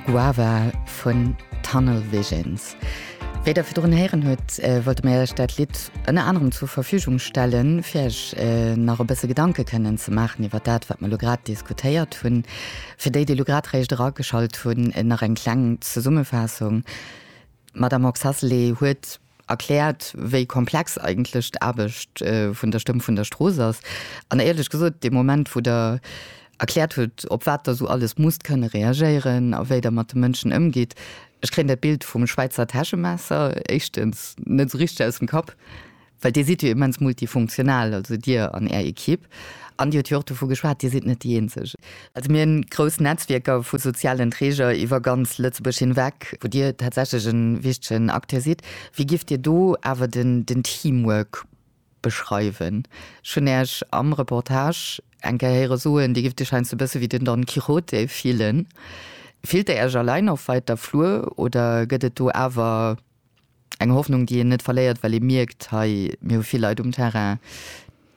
Guava vun Tunnel Visions. Wéi der virdrun héieren hutt, wollte mir iech dat Lidd ënner anerem zur Verfügung stellen, fir iech nach e bësse Gedanke kënnen ze maachen iwwer dat, wat mir elo grad diskutéiert hunn. Fir déi, déi elo grad réischt erageschalt hunn, nach eng kleng Zesummefaassung, D'Madame Oxacelé huet erkläert, wéi komplex eigentlech d'Aarbecht vun der Stëmm vun der Strooss ass. An éierlech gesot, dee Moment, wou Der erkläert hutt, op wat Der esou alles musst kënne reagéieren a wéi Der mat de Mënschen ëmgitt, ech kréien dat Bild vum Schwäizer Täschemesser éischtens net esou richteg aus dem Kapp, well Dir sidd jo immens multifunktional, also Dir an Är Ekipp. An Dir hutt jo och dovu geschwat, Dir sidd net déi Eenzeg. Also mir hunn grouss Netzwierker vu sozialen Träger iwwer ganz Lëtzebuerg hinweg, wou Dir tatsächlech e wichtegen Acteur sidd. Wéi géift Dir do awer den Teamwork beschreiwen? Ech hunn Äech am Reportage eng Kéier héiere soen, Dir géift Iech heiansdo e bësse wéi den Don Quijote fillen. Fillt Der Äech allein op wäiter Flur oder gëtt et do awer. Eng Hoffnung, déi een net verléiert, well ee mierkt, hei, mir hu vill Leit um Terrain,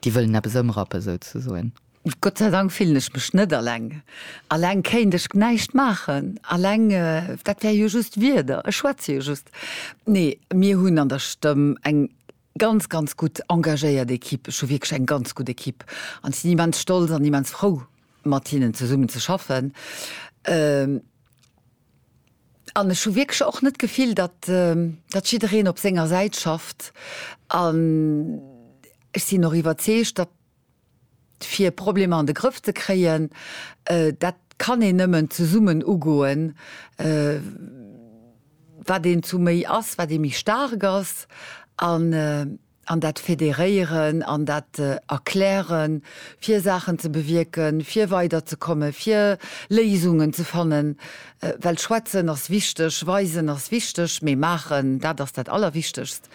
déi wëllen eppes ëmrappen, souzesoen. Gott sei Dank fillen ech mech net aleng. Aleng kéint ech näischt maachen. Aleng, dat wär jo just Wierder, ech schwätze jo just. Nee, mir hunn an der Stëmm eng ganz, ganz gutt engagéiert Ekipp. Ech hu wierklech eng ganz gutt Ekipp an ech sinn immens stolz an immens frou, mat hinnen zesummen ze schaffen. An ech hu wierklech och net d'Gefill, datt jiddereen op senger Säit schafft. An ech sinn och iwwerzeegt, datt fir Problemer an de Grëff ze kréien, dat kann een nëmmen zesummen ugoen, wat een zu méi ass, wat ee méi staark ass. An an dat Federéieren an dat Erklären, fir Saachen ze bewierken, fir weiderzekomme, fir Léisungen ze fannen, well schwätzen ass wichteg, weisen ass wichteg, mee maachen, dat ass dat Allerwichtegst.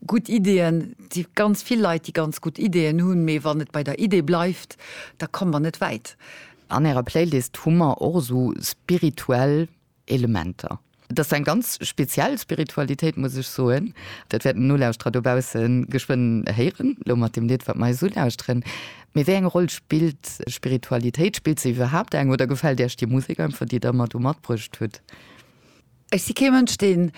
Gutt Ideeën, et si ganz vill Leit, déi ganz gutt Ideeën hunn, mee wann et bei der Idee bleift, da komme mer net wäit. An Ärer Playlist hu mer och esou spirituell. Elementer. Et ass eng ganz speziell Spiritualitéit, muss ech soen. Dat wäerten d'Nolauschterer dobausse geschwënn héieren, elo mat deem Lidd, wat mer eis ulauschteren. Mee wéi eng Roll spillt Spiritualitéit? Spillt se iwwerhaapt eng oder gefält Iech déi Musek einfach, déi Der mar do matbruecht hutt? Ech si kee Mënsch, deen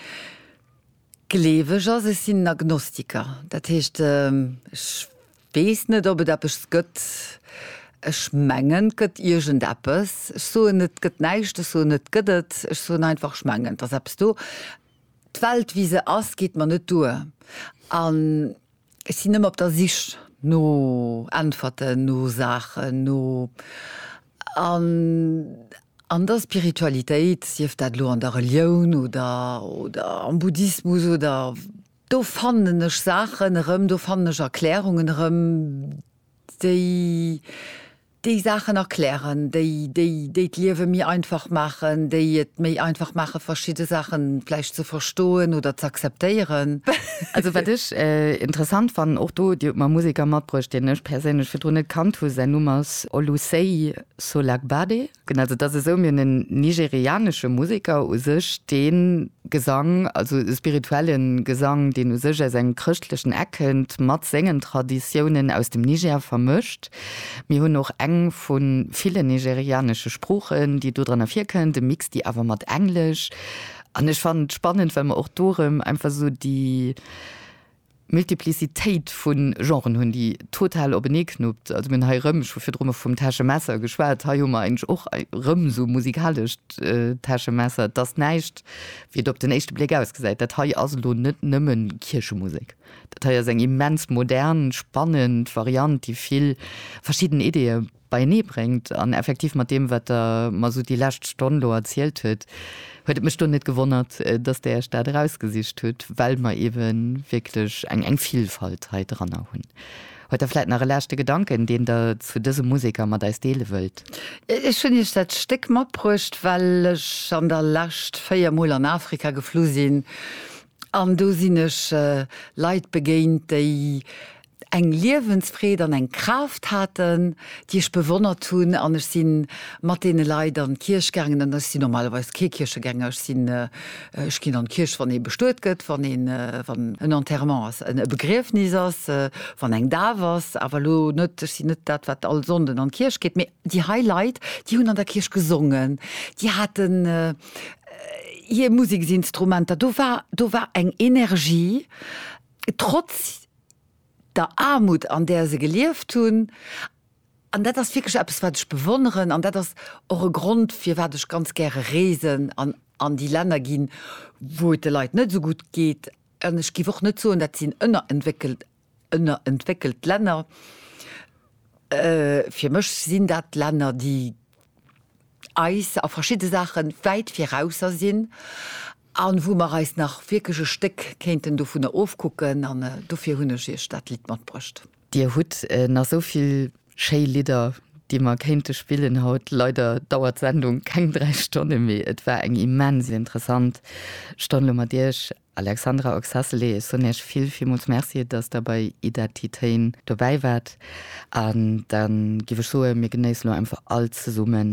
Gleeweg ass. Ech sinn Agnostiker. Dat heescht, ech weess net, ob et eppes gëtt. Ech mengen, et gëtt iergendeppes. Ech soen net, et gëtt näischt. Ech soen net, et gëtt et. Ech soen einfach, ech mengen, et ass eppes do. D'Welt, wéi se ass, geet mer net duer. An Ech sinn ëmmer op der Sich no Äntwerten, no Saachen, no, an an der Spiritualitéit, sief dat elo an der Relioun oder, oder am Buddhismus oder, do fannen ech Saachen erëm, do fannen ech Erklärungen erëm, déi. déi Saachen erklären, déi, déi, déi d'Liewe méi einfach maachen, déi et méi einfach maachen, verschidde Saachen vläicht ze verstoen oder z'akzeptéieren. Also wat ech interessant fannen, och do, Dir hutt mer e Museker matbruecht, deen ech perséinlech virdrun net kannt hu, säin Numm ass Olusei Solagbade. Genau, also et ass esou, mir hunn en nigerianesche Museker u sech, dee Gesang, also e spirituelle Gesang, deen u sech aus engem chrëschtlechen Eck kënnt, mat sengen Traditiounen aus dem Niger vermëscht. Mir hunn och eng vu villen nigerianesche Sproochen, déi do dran ervirkënnt, e Mix, déi awer mat Englesch. An ech fannen et spannend, well mer och do erëm einfach esou déi Multiplicitéit vu Genren hunn, déi total openee knuppt. Also mir hunn hei erëm, ech hu virdru mol vum Täschemesser geschwat, hei hu mer eigentlech och erëm esou e musikalescht Täschemesser. Et ass näischt, wéi et op den éischte Bléck ausgesäit. Dat hei ass elo net nëmmen Kierchemusek. Dat hei ass eng immens modern, spannend Variant, déi vill verschidden Ideeë beienee bréngt. An effektiv, mat deem, wat Der mer esou déi lescht Stonn do erzielt hutt, huet et mech do net gewonnert, dass Der Iech dat erausgesicht hutt, well mer ewe wierklech eng Villfalt hei dranner hunn. Huet Der vläit nach e leschte Gedanken, deen Der zu dëse Museker mat eis deele wëllt? Ech hunn Iech dat Stéck matbruecht, well ech an der Lescht véier Mol an Afrika geflu sinn. An do sinn ech Leit begéint, déi eng Liewensfreed an eng Kraaft haten, déi ech bewonnert hunn. An ech si mat deene Leit an d'Kierch gaangen. An ech si normalerweis kee Kierchegänger. Ech sinn, ech ginn an d'Kierch, wann ee bestuet gëtt, wann een, wann en Enterrement ass, e Begriefnis ass, wann eng Daf ass, awer elo net, ech sinn net dat, wat all Sonnden an d'Kierch geet. Mee Déi hei Leit, déi hunn an der Kierch gesongen, déi haten hir Museksinstrumenter, do war, do war eng Energie, trotz der Aarmut, an där se gelieft hunn. An dat ass wierklech eppes, wat ech bewonneren. An dat ass och e Grond, firwat ech ganz gäre reesen an an déi Länner ginn, wou et de Leit net esou gutt geet. An ech géif och net soen, dat sinn ënnerentwéckelt Ënnerentwéckelt Länner, fir mech sinn dat Länner, déi eis a verschidde Saache wäit virausser sinn a wou mer eis nach wierklech e Stéck kéinten dovunner ofkucken. An dofir hunn ech Iech dat Lidd matbruecht. Dir hutt nach esou vill schéi Lidder, déi mer kéinte spillen haut. Leider dauert d'Sendung keng dräi Stonne méi. Et war eng immens interessant Stonn elo mat Iech. Alexandra Oxacelli, Ech soen Iech vill, villmools Merci, datt Der bei Identitéen dobäi waart. An da giff ech soen, mir genéissen elo einfach all zesummen.